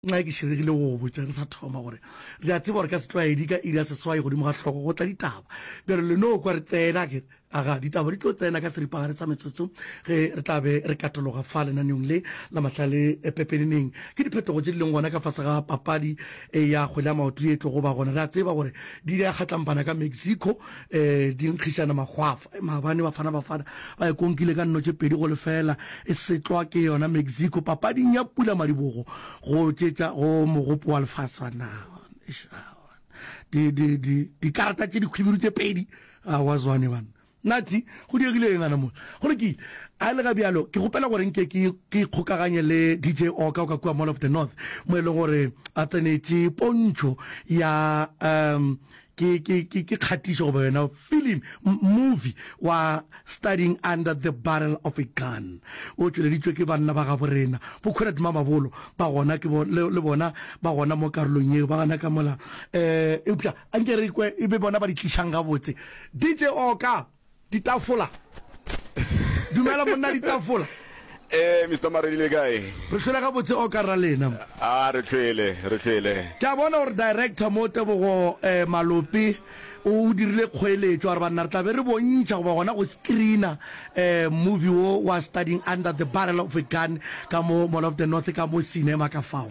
Nxa ke širegile go go botša re sa thoma gore re a tseba gore ka setlwaedi ka iri ya seswai godimo ga hlogo go tla ditaba. Bjalo le no kwa re tsena, ke re, Aga, ditaba di tlo tsena ka seripagare sa metsotso ge re tla be re katologa fa lenaneong le la mahlale pepeneneng. Ke diphetogo tše di leng gona ka fase ga papadi ya kgwele ya maoto ye e tlogo ba gona. Re a tseba gore di ile ya kgatlampana ka Mexico, di nkgišana makgwafo. Maabane Bafana Bafana ba e konkile ka nno tše pedi go lefela e setlwa ke yona Mexico papading ya Pula Madibogo go tšetša go mogopo wa lefase wa naga. Di, di, di, dikarata tše dikgwibiru tše pedi a wa zwane bana natsi go diegile eng ana mo go lokile a le ga bjalo ke gopela gore nke ke ke ikgokaganye le dj oka o ka kua mall of the north mo e leng gore a tsenetše pontšho ya um ke ke ke ke kgatišo goba yona film movie wa studying under the barrel of a gun o tšweleditšwe ke banna ba gabo rena bo comrade mamabolo ba gona ke bo le bona ba gona mo karolong yeo ba gana ka mola eh eupša a nke re kwe e be bona ba di tlišang gabotse dj oka Ditafola. Dumela, monna Ditafola. Ee, Mister Maredi, le kae? Re hlwele gabotse, Oka Rra Lena. A, re hlwele, re hlwele. Ke a bona gore Director mo, Tebogo Malope, o dirile kgoeletšo, a re banna re tla be re bontšha goba gona go screener movie wo wa Studying Under the Barrel of a Gun ka mo Mall of the North, ka mo cinema ka fao.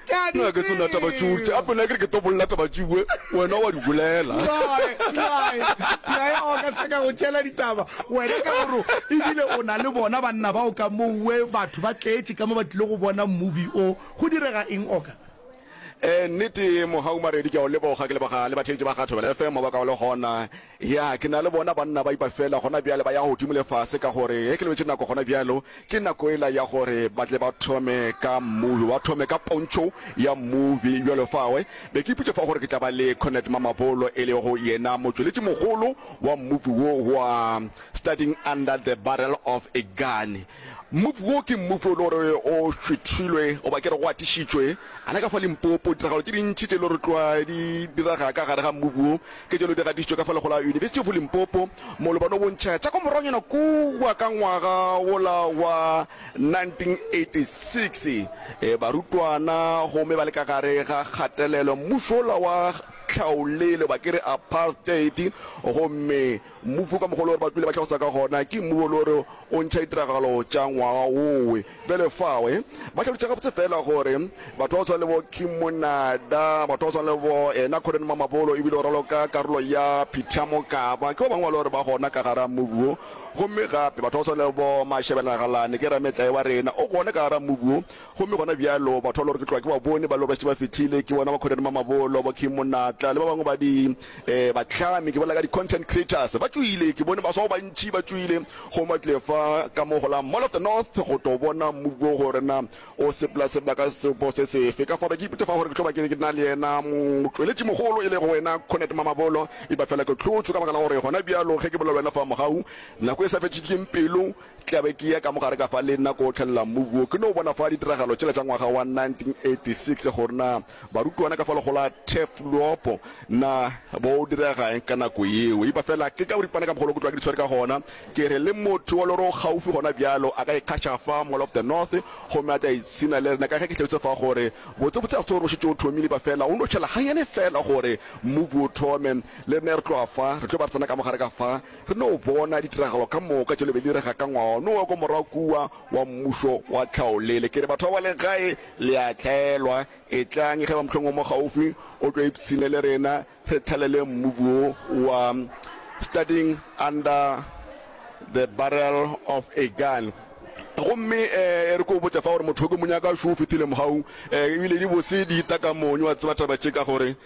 Nna ke tsona taba tšeo tše gape nna ke re ke tlo bolela taba tšewe wena wa di bolela. Nnae, nnae, ke a ya go ka tsheka go tšela ditaba wena ka gore e bile o na le bona banna bao ka mowe batho ba tletše ka mo ba tlile go bona movie o. Go direga eng oka? Ee, nnete ye Mohau Maredi ke a o leboga ke leboga le batheetši ba ga Thobela FM ba ka o le gona. Ya, ke na le bona banna ba ipa feela gona bjale, ba ya godimo le fase, ka gore ge ke lebetše nako gona bjalo, ke nako yela ya gore ba tle ba thome ka movie, ba thome ka pontšho ya movie bjalo fawe. Be ke iputša fa gore ke tla ba le Cornet Mamabolo, e lego yena motšweletši mogolo wa movie wo wa Studying Under the Barrel of a Gun. Movie wo ke movie o le gore o šwethilwe, goba ke re go atišitšwe gana ka fa Limpopo. Ditiragalo tše dintši tše le gore tlwa di direga ka gare ga movie wo, Ke tšelo di gatišitšwe ka fa lego la University of Limpopo mo lo ba no bontšha tša kwa moragonyana kua ka ngwaga wola wa 1986. Barutwana gomme ba le ka gare ga kgatelelo, mmušo wola wa tlhaolele ba ke re apartheid gomme Mmufu ka mokgwa wo le gore ba kwile ba tlhagisa ka gona ke mmu wo le gore o ntšha ditiragalo tša ngwaga wowe. Bjale fawe ba hlalošitše gabotse feela gore batho ba go swana le bo Kim Monada, batho ba go swana le bo ena Conan Mamabolo e bile o ralo ka karolo ya Peter Mokaba ke ba bangwe ba le gore ba gona ka gara mmubu wo. Gomme gape batho ba go swana le bo Mashebela Nagalane ke Rametlae wa rena o gona ka gara mmubu wo. Gomme gona bjalo, batho ba lore ke tloga ke ba bone, ba lore ba šetše ba fihlile, ke bona Bakhoreri Mamabolo, Bokhim Monatla, le ba bangwe ba di, eh, bahlami, ke bolela ka di-content creators, ba tšoile. Ke bone baswa ba bantši ba tšoile, gomme ba tlile fa ka mo go la Mall of the North go tlo bona mmopi wo gore na o sepela sebaka sebo se sefe. Ka fao, ke ipotša fa gore ke tlo ba ke na le yena motšweletšimogolo, e lego wena Cornet Mamabolo. Epa fela ke hlotšwe, ka baka la gore gona bjalo, ge ke bolela le wena fa mogau, nako e sa fetšikeng pelo, Tla be ke ya ka mo gare ka fa le nna ko tlhelela mmu wo ke no bona fa ditiragalo tšela tša ngwaga wa 1986 gore na barutwana ka fa lego la Teflopo na bo direga eng ka nako yeo. Epa fela ke ka boripana ka mogolo ke tloga ke di tshwere ka gona, ke re le motho wa loro gaufi gona bjalo a ka ikgaša fa Mall of the North gomme a tla ipshina le rena ka ge ke hlabetše fa gore botsebotse ga se gore o šetše o thomile epa fela o no tšhela ganyane fela gore mmu wo o thome. Le rena re tloga fa re tlo ba re tsena ka mo gare ka fa Re no bona ditiragalo ka moka tšo le be di direga ka ngwano wa kwa morago kua wa Mmušo wa Tlhaolele. Ke re, batho ba ba leng gae, le a hlaelwa. Etlang, ge ba mohlong o mo gaufi, o tlo ipshine le rena, re thalele mmu wo wa Studying Under the Barrel of a Gun. Gomme e re ke o botša fa gore motho o ke mo nyaka šo o fethile mogau, ebile di bose di ita ka monyo, wa tseba taba tše, ka gore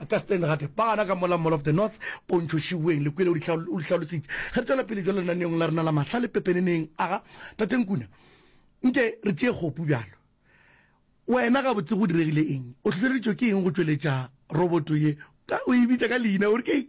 A ka Stan Gate, Bana ka mola Mall of the North, Pontšho Šiweng, le kwele o di hlalositše. Ge re tšwela pele bjalo lenaneong la rena la mahla le pepeneneng, aga Tate Nkuna, nke re tšee kgopu bjalo. Wena gabotse go diregile eng? O hlohleleditšwe ke eng go tšweletša roboto ye? Ka o e bitša ka leina, o re ke eng?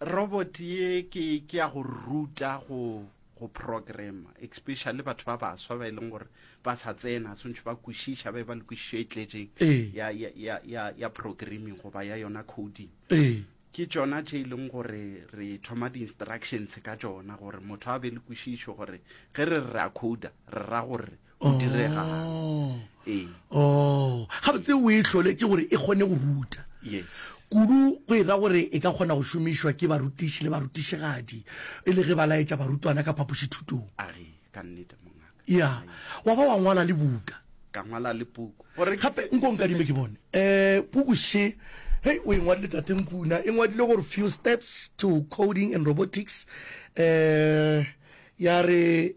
Robot ye ke ke ya go ruta go go programmer especially batho ba baswa ba e leng gore ba sa tsena swantšhe ba kwešiša ba e ba le kwešišo e tletšeng Ee. ya, ya, ya, ya, ya programming goba ya yona coding Ee. ke tšona tše e leng gore re thoma di-instructions ka tšona gore motho a be le kwešišo gore ge re re a coda re ra gore go diregang Oh. ee o gabotse o e tlholetše gore e kgone go ruta yes kudu go e ra gore e ka kgona go šomišwa ke barutiši le barutišigadi e le ge ba laetša barutwana ka phapošithutong a re ka nnete mongaka ya wa ba wa ngwala le buka ka ngwala le puku gore gape nko nkadime ke bone um puku she hei o e ngwadile tatenkuna e ngwadile gore few steps to coding and robotics um ya re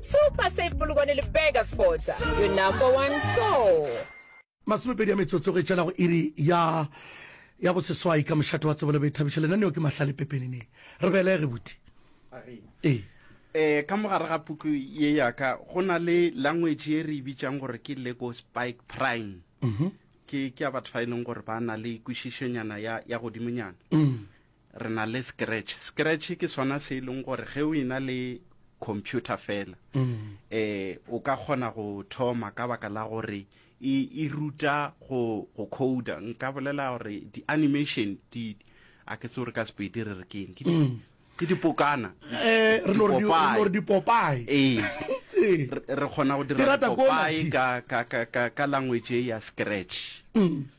Super Safe Polokwane le Burger Sports, your number one store. Masomepedi ya metsotso go etšela go iri ya ya boseswai ka mošate wa tsebolo be thabišo lenaneo ke mahlale pepenene re belege buti ee eh ka mogare ga puku ye yaka go na le language e re e bitšang gore ke lego spike prime mhm. ke ke ya batho ba e leng gore ba na le kwešišonyana ya ya godimonyana mm. re na le scratch scratch ke sona se e leng gore ge o ina le computer fela um o ka kgona go thoma ka baka la gore e, e ruta go, go coda nka bolela gore di-animation di a ke tse gore ka sepedi re re keng ke mm. ke dipokana eh, re dipopae ee re kgona go dira dipopae ka language ya scratch mm.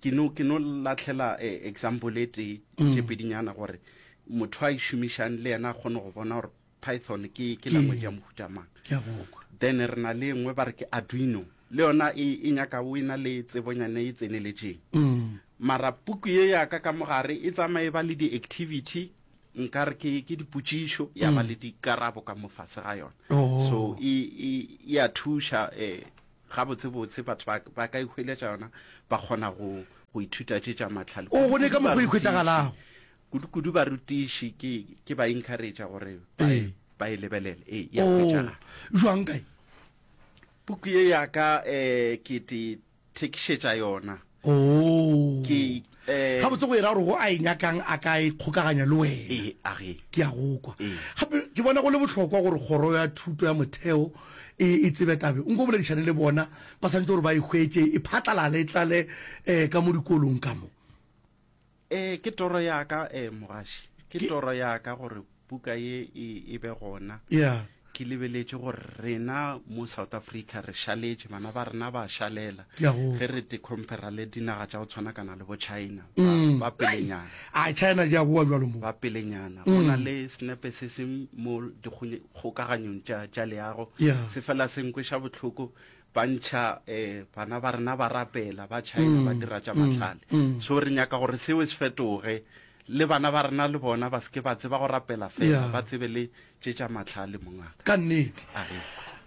ke no ke no latlhela eh, example e tee mm. tše pedinyana gore motho a e šomišang le yena a kgone go bona gore python ke ke language ya mohuta mang then re na le nngwe ba re ke arduino le yona e, e nyaka o e na le tsebonyane e tseneletseng mm. mara puku ye yaka ka mogare e tsamaye ba le di-activity nka re ke ke dipotšišo ya ba mm. le dikarabo ka mofase ga yona oh. so e, e, e a thuša um Gabotsebotse, batho ba, ba ka e hweletša yona, ba kgona go, go ithuta tše tša mahlale. O gone ka mokgwa o ikhwetšagalago. Kudu-kudu barutiši ke, ke ba encouragea gore ba e, ba e lebelele. Ee, e a hwetšagala. Oo, bjang, kae? Puku ye ya ka, eh, ke te, thekišetša yona. Oh. Ke, eh, Gabotse go e ra gore go a e nyakang a ka e kgokaganya le wena. Ee, a ge. Ke a go kwa. Ee. Gape ke bona go le bohlokwa gore kgoro ya thuto ya motheo e e tsebe tabe. Nko boledišane le bona, ba swanetše gore ba e hwetše e phatlalale e tlale eh, ka mo dikolong ka mo. Ee, ke toro ya ka um mogaši ke toro ya ka gore buka ye e, e be gona yeah. ke lebeletše gore rena mo south africa re šaletše bana ba rena ba šalela ge re te compara le dinaga tša go tshwana kana le bo china ba mm. pelenyana a china di a boa jalo mo ba pelenyana go na mm. le senepe se se mo dikgokaganyong tša leago se fela se nkweša bohloko ba ntšha um bana ba rena ba rapela ba china ba dira tša mahlale so re nyaka gore seo se fetoge le bana ba rena le bona ba seke ba tseba go rapela fela Yeah. ba tsebe le tše tša mahlale mongaka ka nnete Ahe.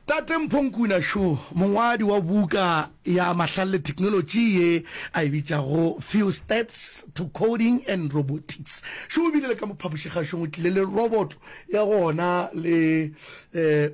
tate mphonkuna šo mongwadi wa buka ya mahlale le technology ye a e bitšago few stats to coding and robotics šo o bile le ka mo phapošikgašong o tlile le roboto ya gona le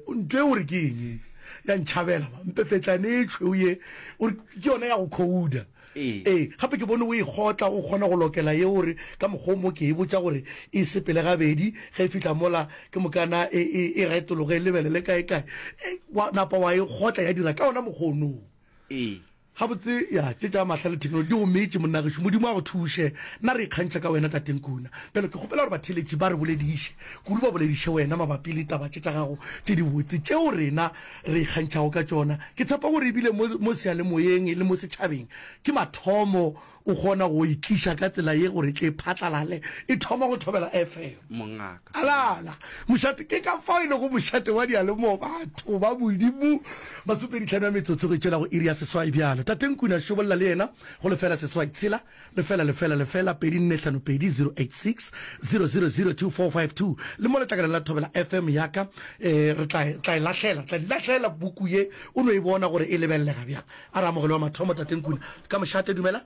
um ntlo e gore ke eng ya ntšhabela ma mpepetlane e tšhweu ye o re ke yona ya go khouda Ee. ee gape ke bone o e kgotla o kgona go lokela ye o re ka mokgwa o mo ke e botša gore e sepele gabedi ge e fihla mola ke mokana e e e retologe e lebelele kae kae Ee, wa napa wa e kgotla ya dira ka ona mokgwa onoo Ee. Gabotse, ya tše tša mahla le theknolotši di go meetše, monna gešo. Modimo a go thuše. Nna re ikgantšha ka wena, Tate Nkuna. Bjalo ke kgopela gore batheeletši ba re bolediše, kudu ba bolediše wena mabapi le taba tše tša gago tše dibotse, tšeo rena re ikgantšhago ka tšona. Ke tshepa gore e bile mo, mo seyalemoyeng le mo setšhabeng, ke mathomo O kgona go e tliša ka tsela ye gore e tle e phatlalale, e thoma go thobela FM. Mongaka. Alala. Mošate. Ke ka fao e lego mošate wa diyalemowa. Batho ba Modimo. Masomepeditlhano ya metsotso go e tšwela go iri ya seswai bjalo. Tate Nkune a šobolla le yena go lefela seswai tshela, lefela, lefela, lefela, pedi nne hlano pedi, 086 000 2452. Le mo letlakaleng la thobela FM ya ka. Ee, re tla, tla e lahlela, re tla di lahlela buku ye, o no e bona gore e lebelelega bjang. A re amogelo wa mathomo Tate Nkuna ka mošate, dumelang.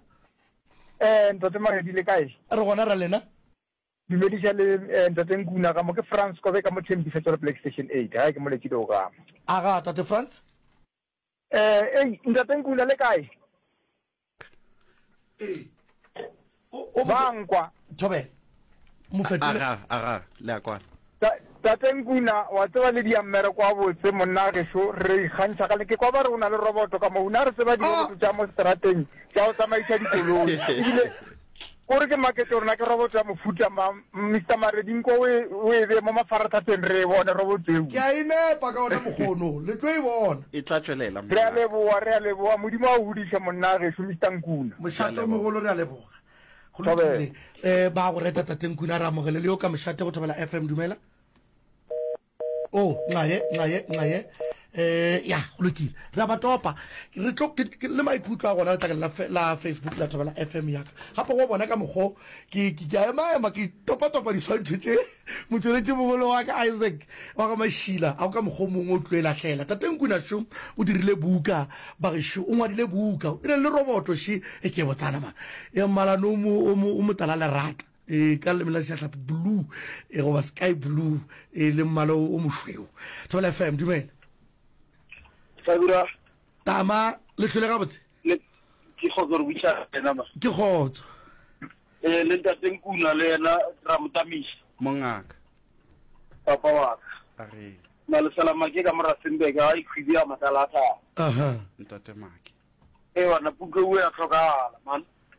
Eh, Ntate Maredi le kae? A re gona ra lena. Dumediša le eh, Ntate Nkuna, ga mo ke Frans Kobe ka mo thembiša tšwale Black Station 8, gae ke mo letše deo ga mo. A ga Tate Frans? Eh, ei, Ntate Nkuna le kae? Ei. Ba a nkwa. Thobela. Mo fetole. Aga, aga, le a kwana. Ta, Tate Nkuna, wa tseba le dia mmereko wa botse, monna a gešo, re ikgantšha gale. Ke kwa ba re o na le roboto ka mo. O ne a re tseba diroboto tša mo seterateng, tša go tsamaiša dikoloi. Ebile, ko re ke maketše gore na ke roboto ya mofuta mang. Mister Maredi nko o e, o e bee mo mafarathapeng re e bone robotsweu. Ke a e nepa ka ona mokgwa ono, le tlo e bona. E tla tšwelela, Re a mongaka. leboga, re a leboga. Modimo a o godiše, monna gešo, Mister Nkuna. Mošate o mogolo, re a leboga. Go Thobela. lokile. Eh, ba a go reta Tate Nkuna, re amogele le yo ka mošate go Thobela FM. Dumela. o oh, nxaye nxaye nxaye um ya go lokile re a ba topa re tlo le maikutlo a gona letlakeng la facebook la thabela f m yaka gape go bona ka mokgo ke a emaema ke topatopa diswantšho tse motsweletši mogolo wa ka isaac wa ga mašila a go ka mokgwa mongwe o tlo e lahlela tateng kunašo o dirile buka bagešu o ngwadile buka e na le roboto še e ke botsana mana ya mmalano o motala lerata e ka leleme la sejatlhapi blue e goba sky blue e le mmala o mošweu thobela fm dumela tama le tlhole gabotse ke kgotso re buisa ena ma ke kgotso eh le ntate nkuna le yena ra motamisa mongaka papa wa ka a re na le sala make ka mora sembe ga i khwidi ya matala tha aha ntate make eh wana puke u ya tlhokala man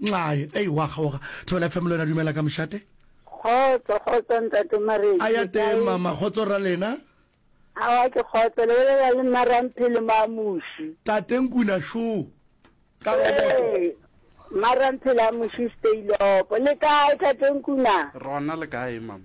Nxae, Ei, wa kgaoga. Thobela FM le yona, Dumela ka mošate. Kgotso, kgotso ntate Maredi. A ya teng mama, kgotso ra lena. Awa ke kgotso, le bolela le Maramphele Mamuši. Tate Nkuna šo, ka roboto. Ee, Maramphele a Muši Steilopo. Le kae tate Nkuna? Rona le kae mama?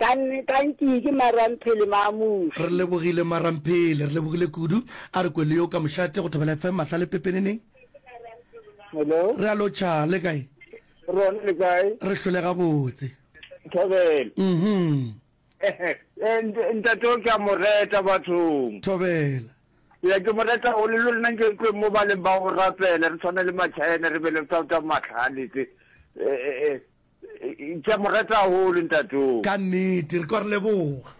ka ka ntši ke maramphele mamuši re lebogile maramphele re lebogile kudu a re kwele yo ka mošate go thobela fm mahla le pepeneneng hello re a lotšha le kae rona le kae re hlole gabotse thobelo mhm ntate o ke a mo reta bathong thobela ya ke mo reta o le lona nke kwe mo ba leng ba go rapela re tshwana le machina re bele tsa tsa matlhaletse eh eh Ke a mo rata haholo ntatoo. Ka nnete, re kwa re leboga.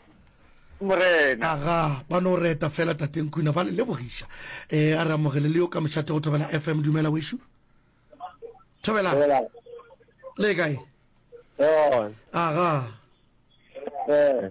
Morena. Aga, ba no reta fela Tate Nkuna, ba le lebogiša. E, a re amogele le yo ka mošate go Thobela FM. Dumela, wešu. Thobela. Thobela. Le kae? Aga. Eh.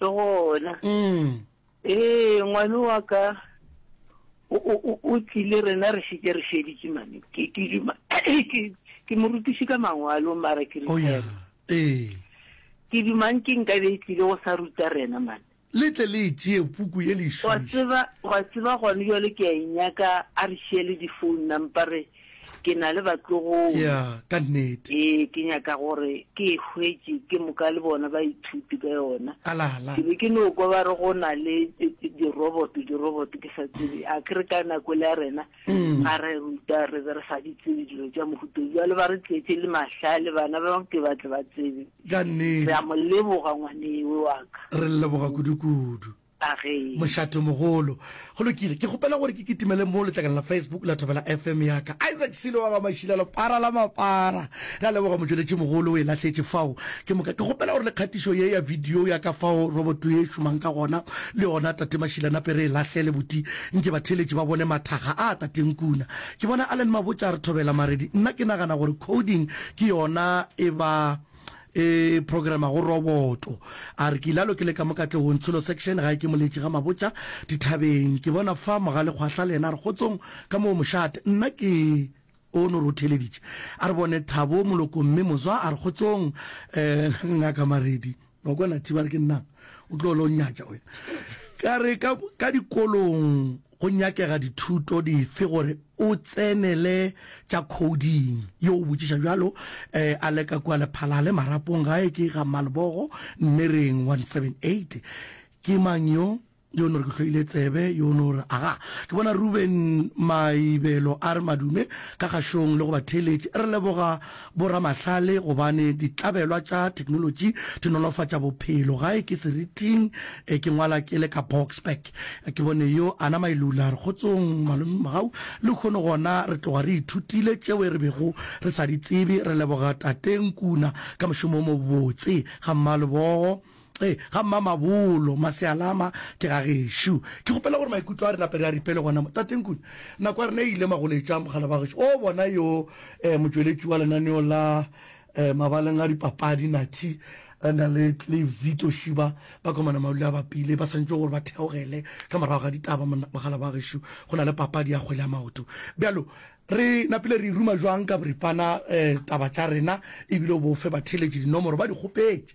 le gona mm. ee ngwane wa ka o tlile rena re šeke re šeditše mane ke morutiši ka mangwalo mara ke oh, ee. ke dumang ke nka be e tlile go sa ruta rena mane le tle le tšee puku ye lešwa tseba gone jale ke a e nyaka a re šiele difounu nampare Ke na le batlogolo. Ya, ka nnete. Ee, ke nyaka gore ke e hwetše ke moka le bona baithuti ka yona. A la la. Ke be ke no kwa ba re go na le diroboto, diroboto, ke sa tsebe. A ke re ka nako ele ya rena, ga re ruta re be re sa di tsebe dilo tša mohuta o. Bjale ba re tletše le mahlale bana ba bangwe ke ba tle ba tsebe. Ka nnete. Re a mo leboga ngwaneewe wa ka. Re le leboga kudu-kudu. Agee. Mošatomogolo. Go lokile. Ke kgopela gore ke kitimele mo letlakana la Facebook la Thobela FM ya ka. Isaac Silo wa ga Mašila lepara la mapara. Re a leboga motšweletšimogolo, o e lahletše fao. Ke moka ke kgopela gore le kgatišo ye ya video ya ka fao roboto ye e šomang ka gona, le yona Tate Mašila nape re e lahlele boti nke batheeletši ba bone mathaga a Tate Nkuna. Ke bona Allen Mabotša a re thobela maredi. Nna ke nagana gore coding ke yona e ba e programa go roboto a re ke ilalo ke le ka mo katlegong tsholo section gae ke moletši ga mabotša dithabeng ke bona fa mogale kgwahla le yena a re kgotsong ka moo mošate nna ke o no re o theleditše a re bone thabo moloko mme mozwa a re kgotsong um ngaka maredi wa kwana thiba re ke nnang o tlo lo nyatša wena ka re ka dikolong Go nyakega dithuto dife gore o tsenele tša coding? Yo o botšiša bjalo a leka kua Lephalale, marapong gae ke ga Mmalebogo, Nnereng 178. Ke mang yo? Yo no re ke hloile tsebe, yo no re, Aga, ke bona Ruben Maibelo a re madume ka kgašong le go batheeletši. Re leboga boramahlale gobane ditlabelwa tša theknolotši di nolofatša bophelo. Gae ke seriting, ke ngwala ke le ka Boksburg. Ke bone yo a nama e lula re kgotsong malome mogau le kgono gona re tloga re ithutile tšeo re bego re sa di tsebe re leboga tate Nkuna ka mošomo o mobotse ga mmalebogo e ga mma mabolo masealama ke ga gešo ke kgopela gore maikutlo a re nape re a ripele gona mo tate Nkuna nako ya rena e ile magoletša mogala ba gešo o bona yo eh, motšweletši wa lenaneo la Mabaleng a dipapadi, Nathi Randa le Clive Zito Shiba ba komana maule a bapile. Ba swantšwe gore ba theogele ka morago ga ditaba mogala ba gešo go na le papadi ya kgwele ya maoto. Bjalo re napile re e ruma jwang ka boripana taba tša rena ebile o bo fe batheeletši dinomoro ba di kgopetše.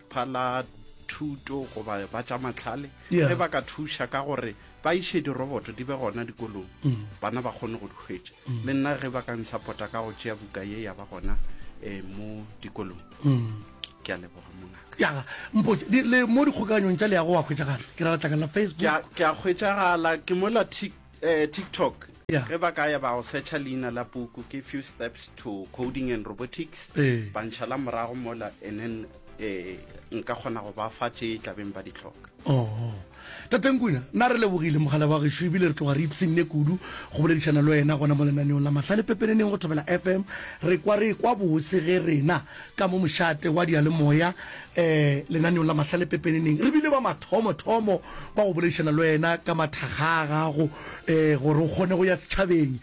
lefapha la thuto goba ba tša matlhale Yeah. ge ba ka thuša ka gore ba iše diroboto di be gona dikolong Mm. bana ba kgone go di hwetša le nna ge ba ka nsapota ka go tšea buka ye ya ba gona um mo dikolong Mm. ke a leboga mongaka ya mpotse di- le mo dikgokaganyong tša leago wa hwetšagala ke ra latlakala Ke facebook a- ke a hwetšagala ke mola tik Eh, TikTok. Yeah. Ge ba ka ya ba go searcha leina la puku ke few steps to coding and robotics. Eh. Ba ntšhala morago mola and then eh nka kgona go ba fa tše tlabeng ba di tlhoka. Oh. Tateng Kuna, na re lebogile mogala wa gešo ebile re tloga re ipshinne kudu go boledišana le wena gona mo lenaneong la mahla le pepeneneng go thobela FM. Re kwa re kwa bose ge rena ka mo mošate wa diyalemoya lenaneong la Mahlale Pepeneneng, re bile ba mathomo-thomo ba go boledišana le wena ka mathakga a gago gore o kgone go ya setšhabeng.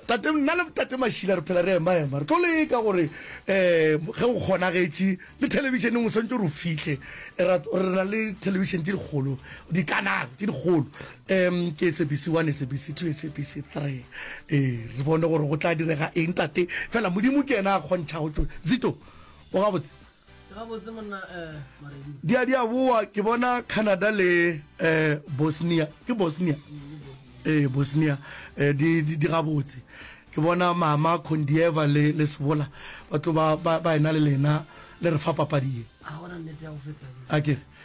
Tate, nna le Tate Mashila re phela re ema-ema, re tlo leka gore ge go kgonagetše le thelebišeneng o swantšwe gore o fihle. Re na le thelebišene tše dikgolo, dikanale tše dikgolo, Um ke esebisi one esebisi two esebisi three ee re bone gore go tla direga eng tate fela modimo ke ena a kgontšha go tlo zito o gabotse gabotse monna um maredi di a di a boa ke bona canada le um bosnia ke bosnia ee bosnia um di di- di gabotse ke bona mama condieva le le sebola ba tlo ba ba ba ena le lena le re fa papadi ye a gona nnete ya go feta a kere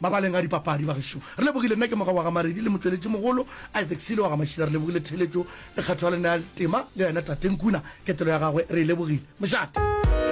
Mabaleng a dipapadi, bagešo, re lebogile. Nna ke Moga wa ga Maredi le motšweletšimogolo Isaac Silo wa ga Mašila. Re lebogile theeletšo le kgatho ya lena ya tema, le yena Tate Nkuna, ketelo ya gagwe re e lebogile. Mošate!